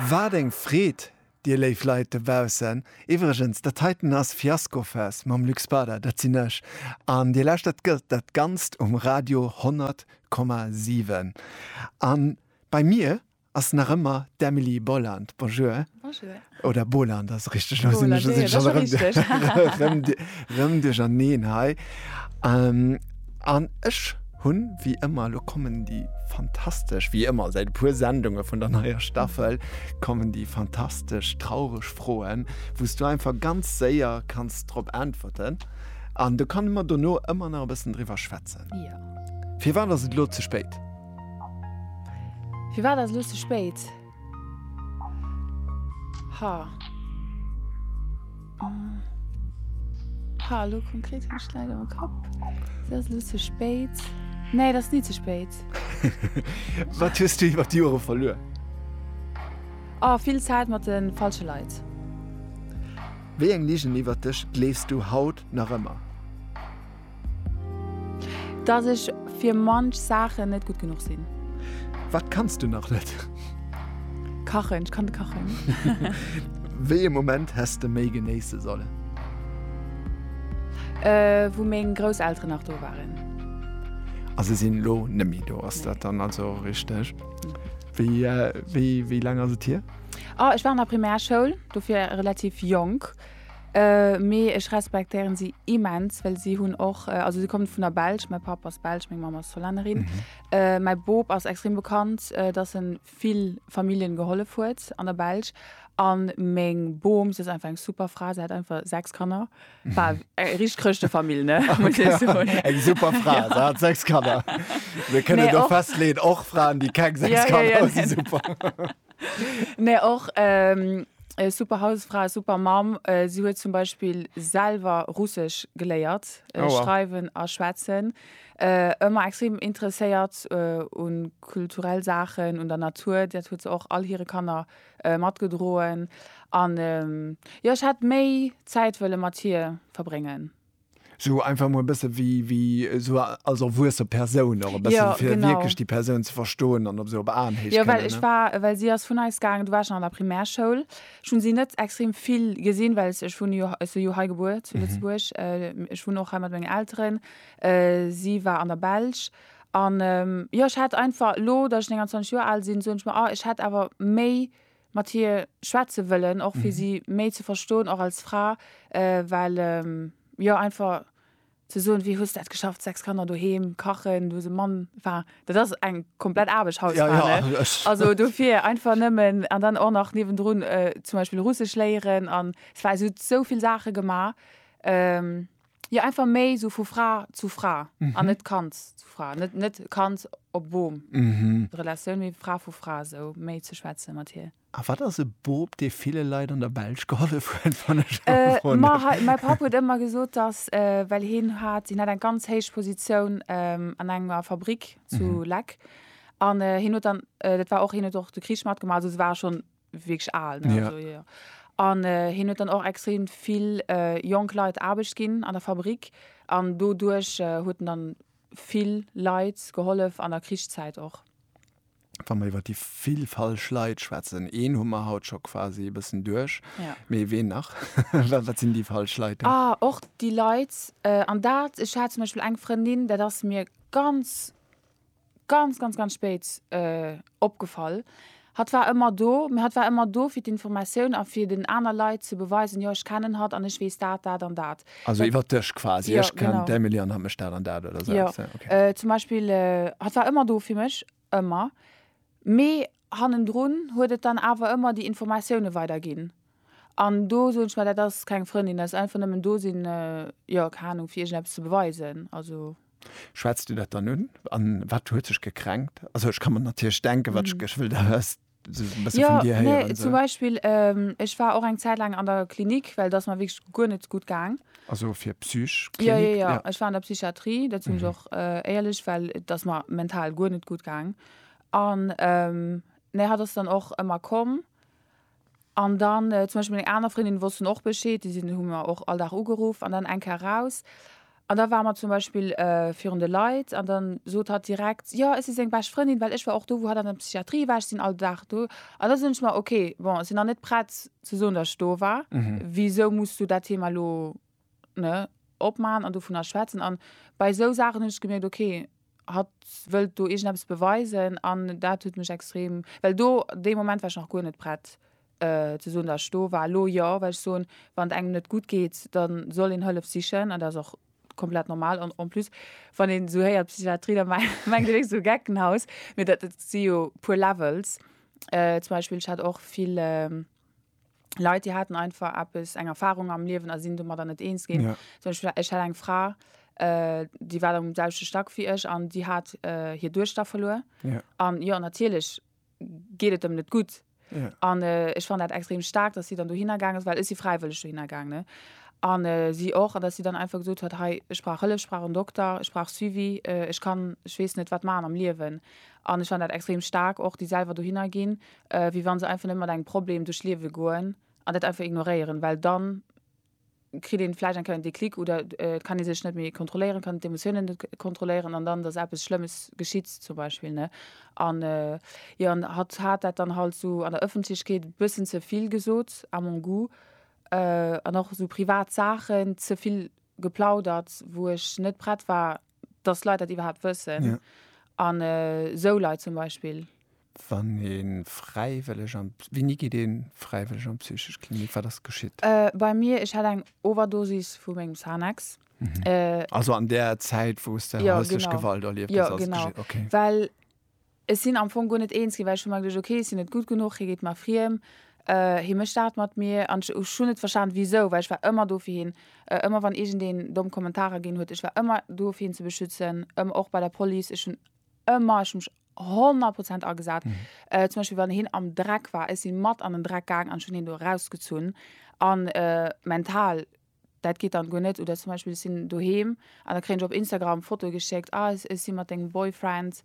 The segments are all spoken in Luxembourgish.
Wat eng Freed, dir léif Leit dobaussen! Iwwregens, dat heiten ass Fiaskofest mam Luc Spada, dat sinn ech, an dir lauschtert dat Ganzt um Radio 100, 7. A bei mir ass nach ëmmer d'Emily Boland. Bonjour. Bonjour. Oder Bohler, dat ass richteg, elo sinn ech ech erëm erëm erëm duercherneen hei. An ech hunn, wéi ëmmer, elo kommen déi fantastesch, wéi ëmmer säit e puer Sendunge vun der neier Staffel, kommen déi fantastesch traureg Froen, wou s du einfach ganz séier kanns drop äntwerten. An do kann mer dono ëmmer nach e bëssen driwwer schwätzen. Firwat ass et elo ze spéit? Firwat ass elo ze spéit? Ha. Ha, lo konkret hun ech leider am Kapp. Ass dat lo ze spéit? Nee, dat ass ni ze spéit. Wat hues du iwwer d'Jore verluer? Oh, vill Zäit mat de falsche Leit. Wéi eng Ligen iwwer dech gleefs du haut nach ëmmer? Dass ech fir manch Saachen net gutt genuch sinn. Wat kanns du nach net? Kachen, ech kann net kachen. Wéi e Moment häss de méi genéisse sollen? Wou meng Grousselteren nach do waren. A se sinn elo net méi do, ass dat dann also richteg? Wéi laang ass et hier? Ech war an der Primärschoul, dofir relativ jonk. Mee ech respektéieren si immens, well si hunn och, also si kommen vun der Belsch, mäi Papp ass Belsch, meng Mamm ass Hollännerin, mäi Bop ass extrem bekannt, dass en vill Familljen gehollef huet an der Belsch an meng Bom, si ass einfach eng super Fra, si hat einfach 6 Kanner, war eng richteg Chrëschtefamill, ne, muss ech soen. Eng super Fra, se hat 6 Kanner, mir kënnen do festleeën, och Fraen, déi keng 6 Kanner hunn, si super. Mä och e super Hausfra, e super Mamm. Si huet zum Beispill selwer Russesch geléiert schreiwen a schwätzen. Ëmmer extrem interesséiert u kulturell Saachen, un der Natur. Dat huet se och all hire Kanner matgedroen. An jo, ech hätt méi Zäit wëlle mat hir verbréngen. Sou einfach mol e bësse wéi, wéi sou als erwuesse Persoun och e bëssen, ja, fir wierklech déi Persoun ze verstoen an op sou op Aenhéicht kënnen. Jo, well ech war, well si ass vun eis gaangen, du waars nach an der Primärschoul, ech hunn si net extrem vill gesinn, well ech wunne jo, ech si jo hei gebuer zu Lëtzebuerg, ech wunnen och hei mat mengen Elteren, si war an der Belsch an jo, ech hat einfach elo, datt ech 29 Joer al sinn, soen ech mer, ah, ech hätt awer méi mat hir schwätze wëllen och fir si méi ze verstoen och als Fra well jo einfach ze soen wéi hues dat geschafft 6 Kanner doheem kachen du hues e Mann enfin dat ass eng komplett Aarbecht Hausfra ne also dofir einfach nëmmen an dann och nach niewendrun zum Beispill Russesch léieren an et war esou esou vill Saache gemaach. Jo einfach méi sou vu Fra zu Fra an net Kand zu Fra, net net Kand op Boom Relatioun mee Fra vu Fra sou méi ze schwätze mat hir. A wat ass e Boob dee ville Leit an der Belsch gehollef huet wann ech emol froen Mä därf? hei mäi Papp huet ëmmer gesot dass well hien hat hien hat eng ganz héich Positioun an enger Fabrick zu Leck an hien huet dann dat war och hien huet och de Krich matgemaach also se ware schonn wierklech al. Ne? Ja. Also, ja. An äh, hien huet dann och extrem vill äh, jonk Leit Aarbecht ginn an der Fabrik an doduerch äh, huet en dann vill Leit gehollef an der Krichszäit och. Wa mer iwwer déi vill falsch Leit schwätzen, een hu mer haut scho quasi e bëssen duerch, Ja. mee ween nach? Wa- Wat sinn déi falsch Leit? Ah, och déi Leit, äh, an dat, ech hat zum Beispiel eng Frëndin, dat ass mir ganz ganz ganz ganz spéit euh, opgefall. Hatt war ëmmer do, mee hatt war ëmmer do fir d'Informatioun a fir den aner Leit ze beweisen, jo ech kennen hatt an ech weess dat, dat an dat. Also iwwer dech quasi, ja, ech kennen genau. d'Emily an hatt mécht dat an dat oder sou ja. eppes. Okay. Äh, zum Beispill, äh, hatt war ëmmer do fir mech, ëmmer. Mee Hannendrun huet et dann awer ëmmer déi Informatioune weider ginn. An do soen ech mer, dat ass keng Frëndin, dat ass einfach nëmmen do sinn, jo, keng Ahnung, fir iergendeppes ze beweisen. Also. Schwätz du dat dann un? An wat huet sech gekränkt? Also ech ka mer natierlech denken, wat ech wëll da just esou e bësse vun dir héieren. Jo, nee, zum Beispill, ech war och eng Zäit laang an der Klinik, well et ass mer wierklech guer net gutt gaang. Also fir Psych. Jo, jo, jo, ech war an der Psychiatrie, dat sinn ech och éierlech, well et ass mer mental guer net gutt gaang. An nee hat ass dann och ëmmer komm. An dann zum Beispill meng aner Frëndinnen wossten och Bescheed, déi sinn hu mer och all Dag ugeruff an dann eng Kéier raus. An da ware mer zum Beispill virun de Leit an dann sot hatt direkt, jo ech si seng bescht Frëndin, well ech war och do wou hatt an der Psychiatrie war, ech sinn all Dag do. An da soen ech mer, ok bon ech sinn nach net prett ze soen, datt ech do war, wisou muss du dat Thema elo ne, opmaachen an dovunner schwätzen. An bei esou Saachen hunn ech gemierkt, ok, hatt wëllt do iergendeppes beweisen an dat huet mech extrem, well do dee Moment war ech nach guer net prett ze soen, datt ech do war. Elo jo, well ech soen, wann et engem net gutt geet, da soll een Hëllef sichen an dat ass och komplett normal. An en plus, wann een esou héiert Psychiatrie, da mengt een, et ass e Geckenhaus, mee dat si jo puer Levels. Zum Beispill, ech hat och vill. Leit déi haten einfach eppes eng Erfahrung am Liewen a sinn domadder net eens ginn. Ja. Zum Beispiel ech hat eng Fra, äh, déi war am selwechte Stack wéi ech an déi hat äh, hir Duechter verluer. Ja. An jo, natierlech geet et em net gutt. Ja. An äh, ech fand dat extrem stark, dass si dann dohinner gaang ass, well ech si fräiwëlleg dohinner gaang, ne? An äh, si och, an dass si dann einfach gesot huet, hei, ech brauch Hëllef, ech brauch en Dokter, ech brauch Suivi, äh, ech kann, ech weess net wat maachen am Liewen. An ech fand dat extrem stark och, déi selwer dohinner ginn, wéi wann se einfach net mat engem Problem duerch d'Liewe goen an dat einfach ignoréieren, well dann kritt een vläicht eng Kéier en Déclic oder et kann ee sech net méi kontrolléieren, kann d'Emotiounen net kontrolléieren an dann dass eppes Schlëmmes geschitt zum Beispill, ne. An jo an hatt hat dat dann halt esou an der Ëffentlechkeet e bëssen ze vill gesot à mon goût an och esou privat Saachen ze vill geplaudert, wou ech net prett war, dass Leit dat iwwerhaapt wëssen an esou Leit zum Beispill. Wann een fräiwëlleg an, wéini geet een fräiwëlleg an d'psychesch Klinik? Wat ass geschitt? Bei mir, ech hat eng Overdosis vu mengem Xanax. Also an där Zäit wou s de hauslech Gewalt erlieft hues ass et geschitt? Jo genau, okay. Well ech sinn am Fong guer net eens ginn, well ech hu mer geduecht, okay ech sinn net gutt genuch, hie geet mer friem, hie mécht dat mat mir. An ech hunn net verstanen wisou, well ech war ëmmer do fir hien, ëmmer wann iergendeen domm Kommentarer ginn huet, ech war ëmmer do fir hien ze beschützen, ëm och bei der Police, ech hunn ëmmer, ech hu mech honnert Prozent agesat. Zum Beispill wann hien am Dreck war, ech si mat an den Dreck gaang an ech hunn hien do erausgezunn. An mental, dat geet dann guer net. Oder zum Beispill ech sinn doheem an da kréien ech op Instagram Fotoe geschéckt, ah ech sinn mat dengem Boyfriend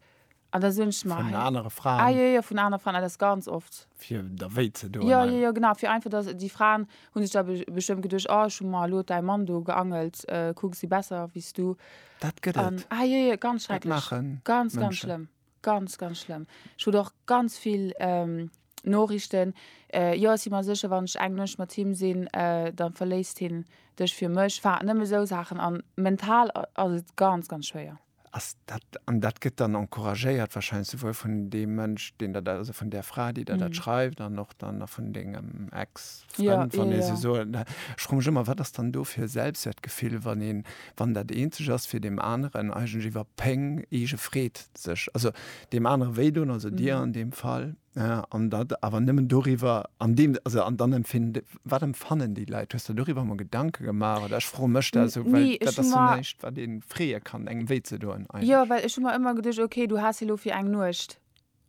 an da soen ech mer, Vun anere Fraen. ah jo jo, vun anere Fraen, ah dat ass ganz oft. Fir der wéi ze doen. Jo jo jo, genau, fir einfach dass déi Fraen hu sech da bestëmmt geduecht, oh ech hu mer elo däi Mann do geangelt, kucks si besser wéi s du. Dat gëtt et. Um, ah, je, je, ganz schrecklech. Ganz, ganz schlëmm. Ganz, ganz schlëmm. Ech hun och ganz vill ähm, Norichten. Äh, jo, si mer sécher, wann ech eng Nuecht mat him sinn, äh, da verléisst hien dech fir mech. Enfin, nëmme sou Saachen. An mental ass et ganz, ganz schwéier. Ass dat, an dat gëtt dann encouragéiert wahrscheinlech souwuel vun deem Mënsch, deen der dat, also vun där Fra, déi der dat schreift, an och dann vun dengem Ex? Frënn, wann ee se soen. Da froen ech ëmmer, wat ass dann do fir e Selbstwertgefill, wann een, wann dat eenzeg ass, fir deem aneren eigentlech iwwer Péng, eege Freed sech, also deem anere wéi doen, also dir an deem Fall, an dat awer nëmmen doriwwer, an deem, also an dann empfin, wat empfannen déi Leit? Hues de der doriwwer emol Gedanke gemaach? Oder ech froe mech dat esou, well dat ass jo näischt, wat ee freeë kann, engem wéi ze doen eigentlech. Jo, well ech hu mer ëmmer geduecht, okay, du has elo fir eng Nuecht,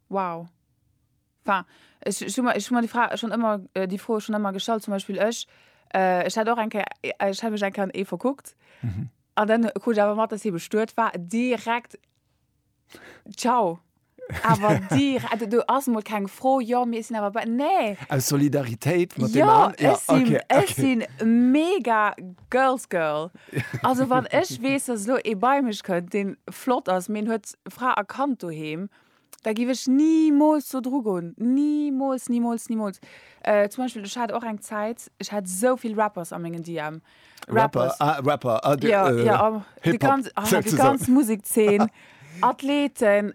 wow. Enfin, ech, ech hu mer, ech hu mer déi Fra schonn ëmmer, déi Fro schonn ëmmer gestallt. Zum Beispill ech, äh, ech hat och eng Kéier, ech hat mech eng Kéier an ee verkuckt. An dann krut ech awer mat, dass hie bestuet war. Direkt, ciao. Awer direkt, also do ass emol keng Fro, jo, mee ech sinn awer bei, nee. Aus Solidaritéit mat deem an, jo, okay, okay. Jo, ech sinn, ech sinn mega Girls Girl. Also wann ech weess, dass elo ee bei mech kënnt, dee flott ass, mee en huet Fra a Kand doheem, Da giff ech nimools do dru goen. Nimools, nimools, nimools. Äh, zum Beispill, ech hat och eng Zäit, ech hat esou vill Rappers a mengen DM. Rapper, ah, Rapper, ah, de, ja, äh, ja, am, de ganz, ah, de ganz Musekzeen, Athleten.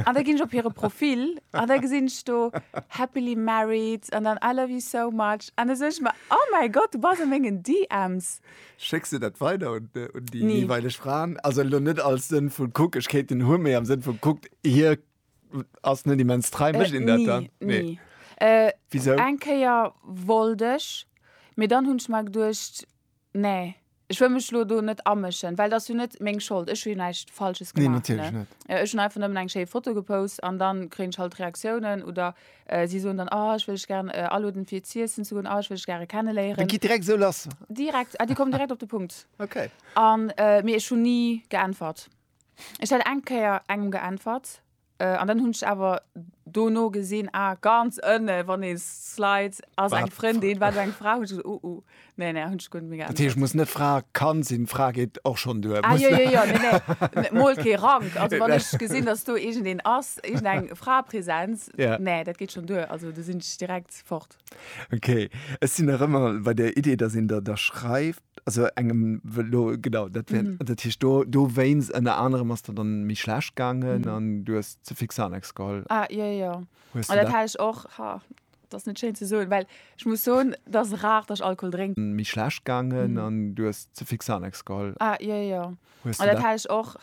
An da ginn ech op hire Profil an da gesinn ech do happily married an dann I love you so much an da soen ech mer, oh mäi Gott, du bass a mengen DMs. Schécks du dat weider un, un déi nee. jeweilech Fraen? Also lo net als Sënn vu kuck, ech kéint den hu, méi am Sënn vu kuckt, hie ass net immens trei, äh, mécht een dat dann? Nee. nee. Äh, Wieso? Eng Kéier wollt ech, mee dann hunn ech mer geduecht, nee. Ech wëll mech lo do net amëschen, well dass jo net meng Schold. Ech hunn jo näischt Falsches gemaach. Nee, natierlech net. Äh, ech hunn einfach nëmmen eng schéi Foto gepost an dann kréien ech halt Reaktiounen oder Si soen dann, Oh, ech wëll dech gären aloden, fir z'iessen ze goen. Oh, ech wëll dech gäre kenneléieren. Et geet direkt esou lass. Direkt, déi kommen direkt op de Punkt. Ok. A mee ech hunn ni geäntwert. Ech hat eng Kéier engem geäntwert, an dann hunn ech awer dono gesinn, Ah, ganz ënne, wann ee slide, ass eng Frëndin, war do eng Fra. Hunn ech gesot, Oh, oh. Nee, nee, hunn ech guer net méi geännert. Dat heescht, muss net Fra, kann sinn, Fra geet och schonn duer. Ah, jo, jo, jo, nee, nee, mol kee Rank. Also wann ech gesinn, datt do iergendeen ass, iergendeng Fraepräsenz, nee, dat geet schonn duer. Also do sinn ech direkt fort. Ok, ech sinn nach ëmmer bei der Idee, datt een der da schreift, also engem elo, genau, dat wär, dat heescht do, dowéinst ënner anerem ass der dann méi schlecht gaangen an du hues ze fix Xanax geholl. Ah, jo, jo, jo, jo, dat hat ech och, ha. Dat ass net schéin ze soen, well ech muss soen, et ass rar, datt ech Alkohol drénken. Méi schlecht gaangen an du hues ze fix Xanax geholl. Ah, jo, jo. Hues du dat?